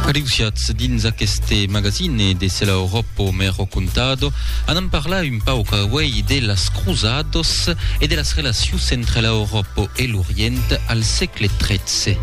Adeusiatz dins aqueste magazine de Se la Europa m'è rocontado anam parlar un pauc auei de las Cruzados e de las relacions entre la Europa e l'Orient al sègle XIII.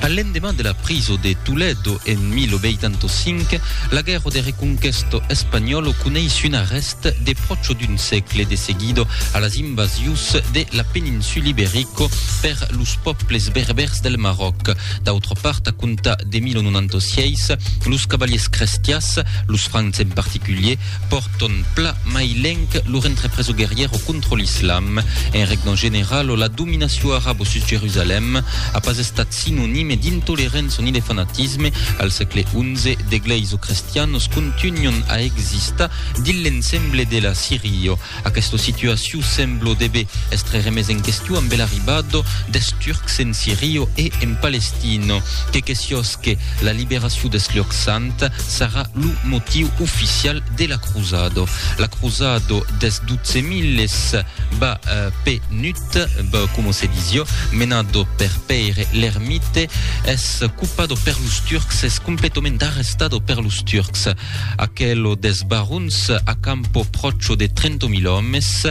A l'endeman de la priso de Toledo en 1805, la guèrra de reconquèsta espanhòla coneis un arrèst de pròcha d'un sègle de seguida a las invasius de la peninsula Iberica per los pòbles berbèrs del Maròc. D'autra part, a comptar de 1096, los cavaliers crestiás, los francs en particulier, Pòrton pla mai lenc lo rentre preso guerrièr o contra l'islam. En regna general o la dominacion arabo sus Jerusalèm a pas estat sinonime d'intolerença ni de fanatisme. Al sègle xi, d'egleis o crestianos contunhon a existar dins l'ensemble de la Sirio. Aquesta situaciu semblo debe estre remes en questiu ambe l'arribado des Turcs en Sirio e en Palestino, que que siosque la liberaciu des Lhòc Sant sarà lo motiu oficial de la crusado. La crusado des dotze milles ba pe Nut, ba como se disio, menado per Pèire l'Ermite, es copado per los Turcs, es completament arrestado per los Turcs. Aquelo des barons a campo pròcho de trento mil òmes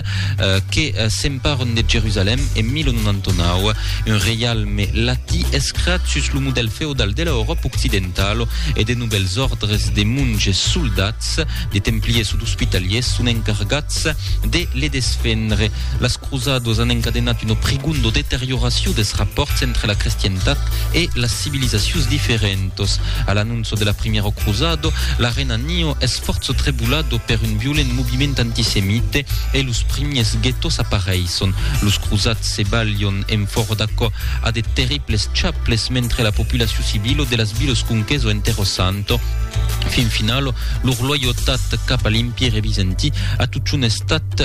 que s'emparon de Jerusalèm en 1099, un reialme latí escrat sus lo modèl feodal de la Euròpa occidentalo e de novèls òrdres de monges soldats, de templiers o d'ospitaliers son encargats de le desfendre. Las. Cruzadors an encadenat una prigunda deterioracion des rapòrts entre la crestientat e las civilizacions diferentas. A l'anonça de la primièra cruzada, la rena Nio es fòrça trebulada per un violent moviment antisemite e los primièrs guètos apareisson. Los cruzats se balhan enfòra d'aquò a de terribles chaples mentre la populacion civila de las vilas conquesa enterrosanta fin finala lor loyautat cap a l'Empire Bizantí a tuchun estat